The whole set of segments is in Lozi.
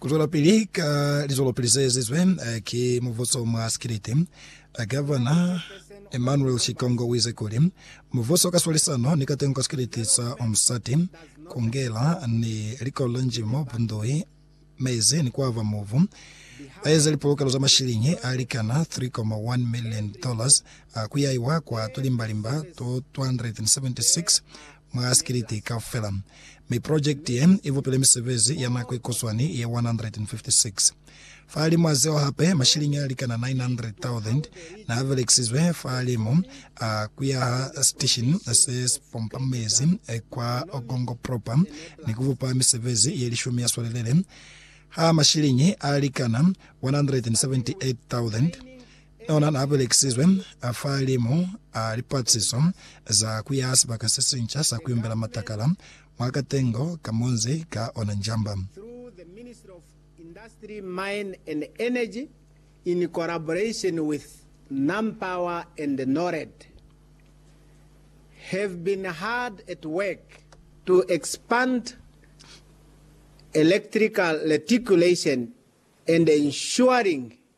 Kuzwelapili ka lizwelopili zeezizwe ki mubuso mwa sikiliti, Gavana Emmanuel Shikongo uize kuli, mubuso ka swalisano ni katengo ka sikiliti sa Umsati, Kungela ni likolo la Njimo, Bundui, Mezi ni Kwava Mubu, baeze lipolokelo za mashilingi alikana 3.1 million dollars kuyaiwa kwa tulimbalimba to 276 mwa sikiliti kaufela, mi projekiti ye i bupile misebezi ya nako ikuswani ye 156. Fahalimu a zeo hape, mashiliñi a likana 900,000 n'a belekisizwe fahalimu a ku yaha siteshini se si pompa mezi kwa Ogongo Propa ni ku bupa misebezi ye lishumi ya swalelele ha mashiliñi a likana 178,000. Ona n'a belekisizwe fahalimu a lipatiso za ku ya sibaka se sinca sa ku imbela matakala mwa katengo ka munzi ka ona Njamba. through the Ministry of Industry, Mine and Energy in collaboration with NamPower and NORAD, have been hard at work to expand electrical reticulation and ensuring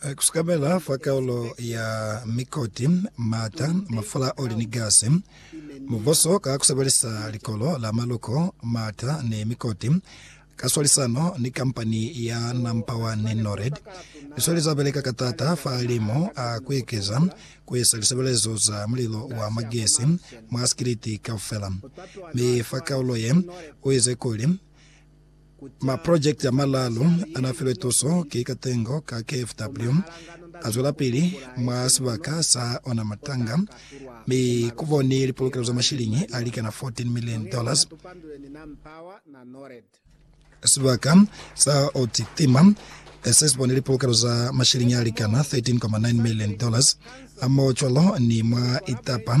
Ku sukamela fa kaulo ya mikoti, mata, mafula a oli ni gasi. Mubuso ka ku sebelisa likolo la maluko, mata ni mikoti ka swalisano ni kampani ya Nampawani Nored, i sweli za beleka ka taata fa limo a ku ekeza ku isa lisebelezo za mulilo wa magesi mwa sikiliti kaufela. Mi fa kaulo ye, u ize kuli, Maprojekiti a malaalu anafilwe tuso ki katengo ka KFW azwelapili mwa sibaka sa ona Matanga, mi kubo ni lipolokelo za mashilingi alikana 14 million dollars. Sibaka sa Otitima sesibone lipolokelo za mashilingi alikana 13.9 million dollars. Hamoho cwalo ni mwa Itapa,